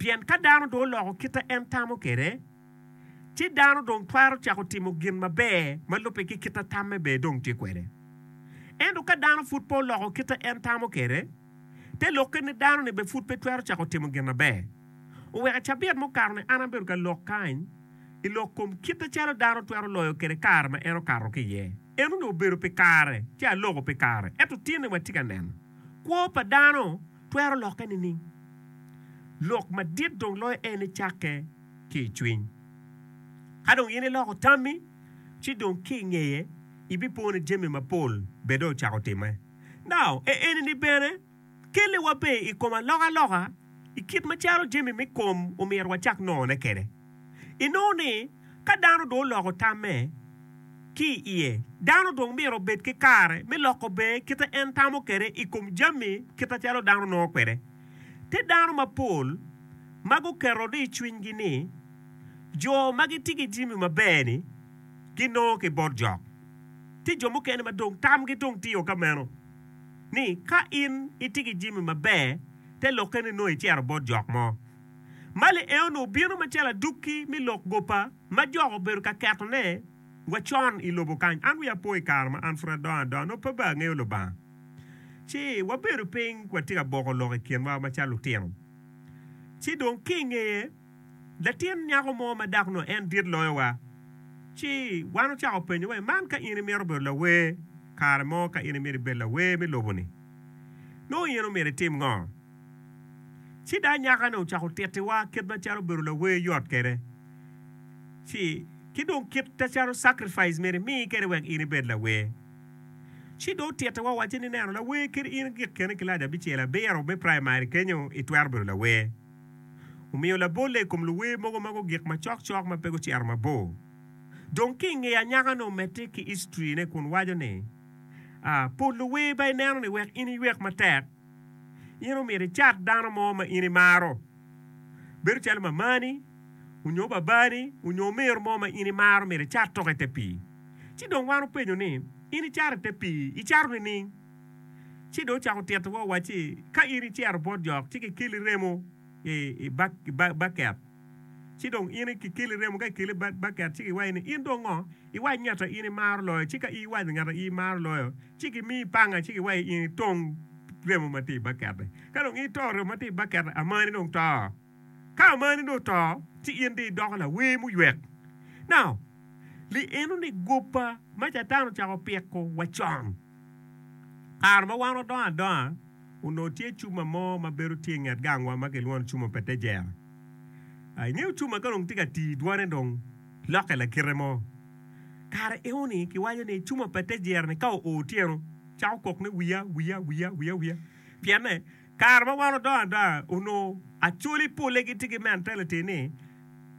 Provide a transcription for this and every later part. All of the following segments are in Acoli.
Pien ka dano dong oloko kit ma en tamo kwede, ci dano dong twero cako timo gin maber ma lubbe ki kit ma tamme bene dong tye kwede. Ento ka dano pud pe oloko kit ma en tamo kwede, te lokke ni dano-ni bene pud pe twero cako timo gin maber. Oweka cabit mukato-ni an abedo ka lok kany i lok kom kite calo dano twero loyo kwede kare ma en okato ki iye. Enoni obedo pi kare ci aloko pi kare, ento tinni watye ka neno kwo pa dano twero lokke nining? Lok madit dong loyo en ni cakke ki i cwiny. Ka dong in iloko tammi, ci dong ki i ngeye ibipo ni jami mapol bene dong ocako timme. Now, e eni-ni bene kelliwa bene i kom alokaloka i kit macalo jami me kom omyero wacak nongone kwede. Inongo ni, ka dano dong oloko tamme ki i iye, dano dong myero obed ki kare me loko bee kite en tamo kwede i kom jami kite calo dano nongo kwede. Tye dano mapol ma guketo ni i cwinygi ni jo ma gitye ki jimi maber-ni ginongo ki bot jok. Tye jo mukene ma dong tamgi dong tio ka meno, ni ka in itye ki jimi maber, te lokke ni nongo icito bot jok mo. ma lieo-nu obino macalo adukki me lok gopa ma jok obedo ka ketone wa con i lobo kany. An wiya opo i kare ma an pud adongo adonga, nongo pe baa angeyo Lubanga. Ci wabedo piny watye ka boko lok i kinwa macalo lutino. Ci dong ki i ngeye, latin nyako mo ma dako nongo en dit loyowa. Ci wan ocako penyo wai, Man ka in imito bedo lawer kare mo, ka in imito ibed lawer me lobo-ni, nongo in omyero itim ngo? Ci dai nyaka-ni ocako tittiwa kit macalo obedo lawer yot kwede, ci ki dong kit macalo sacrifice myero imi kwede wek in ibed lawer. Ci dong otittiwa owacce ni, Neno, lawer kadi in gik kene kilaci abicel abiro me praimari kenyo itwero bedo lawer. Omiyo labolle i kom luwer mogo ma gugik macok cok ma pe gucito mabor. Dong ki i ngeye anyaka-nu omedde ki history-ne kun waco ni, Pol luwer ba ineno ni wek in iywek matek, In omyero icat dano mo ma in imaro, bedo calo mamani onyo babani onyo omiro mo ma in imaro omyero icat toko i te pii. Ci dong wan openyo ni, In icato i te pii icato nining? Ci dong ocako tito wa owacci, Ka in icero bot jok ci kikeli remo i baket, ci dong in kikeli remo ka kikeli i baket ci kiwaci ni, In dong ngo? Iwac ngat a in imaro loyo, ci ka iwaco ngat a in imaro loyo, ci gimi panga ci giwaci in itong remo ma tye i bakette. Ka dong in itong remo ma tye i bakette, amani dong to. Ka amani dong oto, ci in dong idoko lawer muywek. Now, lienoni goba ma Catan ocako opiko wa con. Kare ma wan wadongo adonga, onongo tye cuma mo ma bedo tye i nget gangwa ma kilwongo ni cuma pe te jera. Ingeyo cuma ka dong tye ka tii dwane dong lokke lakite mo. Kare enoni kiwaco ni cuma pa te jiro ni ka oo otyeno cako kok ni wiya wiya wiya wiya wiya pyenne kare ma wan odongo adonga onongo acoli pole gitye ki mentality ni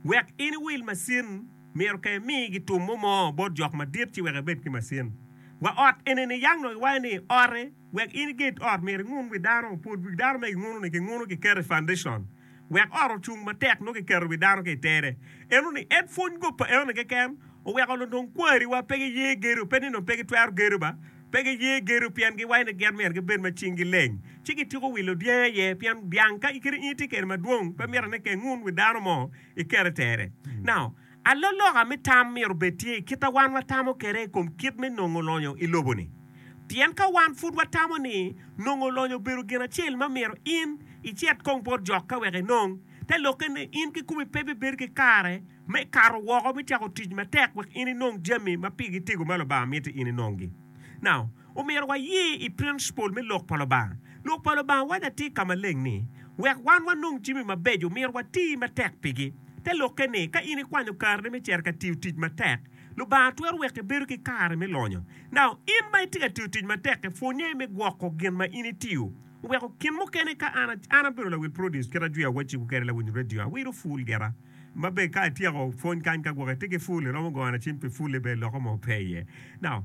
wek in iwil macin myero ka imi gi tum mo mo bot jok madit ci wek ibed ki macin. Wa ot enini yang dong iwaco ni ote wek in iget ot myero ingun wi dano pud wi dano ma ginguno ni ginguno giketo i foundation. wek ot ocung matek nongo kiketo wi dano ki i tere. Eno ni en pwony kop pa enoni keken oweko nongo dong kwariwa pe giye gedo, pe ni dong pe gitwero gedo ba, pe giye gedo pien giwaco ni gin myero gibed ma cinggi leng, ci gityeko wilo dyangi aye, pien dyang ka in kadi in itye kwede madwong pe mitte ni keng un wi dano mo ikete i tere. Now. Aloloka me tam myero obed tye i kit a wan watamo kwede i kom kit me nongo lonyo i lobo-ni. Pien ka wan pud watamo ni nongo lonyo obedo gin acel ma myero in icit kong bot jok ka wek inong, te lokke ni in kikomi pe bibedo ki kare me kato woko me cako tic matek wek in inong jami ma pigi tego ma Lubanga mito in inonggi. Omyero waye i principle me Lok pa Lubanga. Lok pa Lubanga waco atir ka maleng ni, wek wan wanong jami mabeco, myero wati matek pigi. Te lokke ni, ka in ikwanyo karini me cito ka tiyo tic matek, Lubanga twero weko ibedo ki kare me lonyo. Now, in ma itye ka tiyo tic matek-ki, pwonnye me gwoko gin ma in itiyo. Weko gin mukene ka an, an abedo lawil produce kit ajwiyo awacciwu kwede, lawiny radio, awiro ful gira, ma bene ka atyeko pwony kany ka gwoko ite ki ful, iromo gongo na cim pi ful-li bene loko mo pe iye. Now.